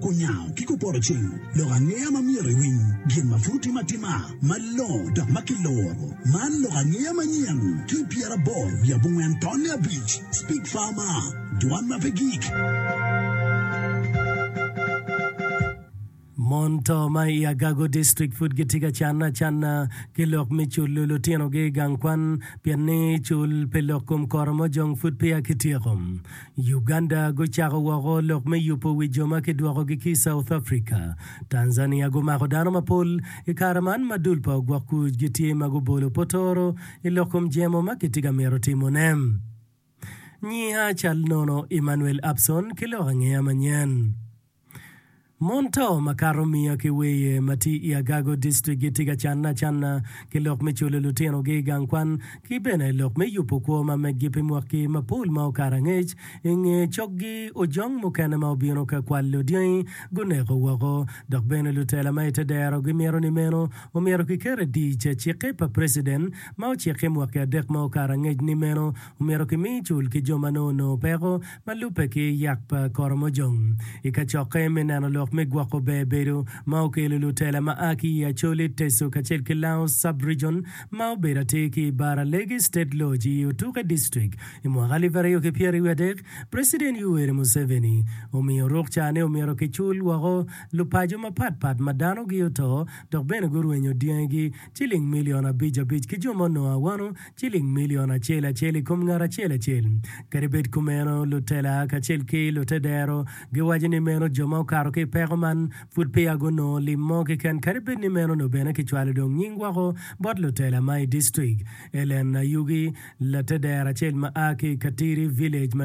Kunyango ki kupoto cing lok angeya ma myero iwiny gin ma pud otim atima malongo dok ma kiloro. Man lok angeya manyen ki pyeraboro wiye abongwen tonne abic, Speak Farmer, Dwan ma pe gik. Mon to ma i Agago District pud gitye ka canne acanna ki lok me culo lutinogi i gang kwan pien ni cul pi lok kom koro mojong pud peya kityeko. Uganda gucako woko lok me yubo wi jo ma kidwokogi ki i South Africa. Tanzania gumako dano mapol i kare man ma dul pa ogwok kuc gitye ma gubolo potoro i lok kom jemo ma kitye ka mito timone. Nyiha cal nono Emmanuel Abson ki lok angeya manyen. Mon to makato miya ki weye ma tye i Agago District gitye ka canne acanna ki lok me culo lutinogi i gang kwan ki bene lok me yubo kwo ma meggi pi mwaki mapol ma okato angec. I nge coggi, ojong mukene ma obino ka kwalo dyangi guneko woko, dok bene lutela ma i te dero gimito ni meno omyero kiket i dic. Cikke pa preciden ma ociki mwaki adek ma okato angec ni meno omyero kimi cul ki jo ma nongo onongo peko Ma lubbe ki yat pa koromojom i kacokke me neno lok me gwoko ber bedo ma okelo lutela ma a ki i Acholi, Teso kacel ki Lango Sub-rijon ma obedo atir ki i Bara Legi State Lodge i Otuke District i mwaka alip aryo ki pyeraryo wiye adek, President Yoweri Museveni omiyo rukca ni omyero kicul woko lupaco mapat pat ma danogi oto dok bene gurwenyo dyangigi ciling milion abic abic ki jo ma onongo awano ciling milion acel acel i kom ngat acel acel. Kadi bed kumeno, lutela kacel ki lute dero giwaco ni meno jo ma okato ki i peko man pud peya gunongo lim mo keken. Kadi bed ni meno nongo bene kicwalo dong nying woko bot lutela ma i distrik Ellen Ayugi, late dero acel ma a ki i Katiri Village ma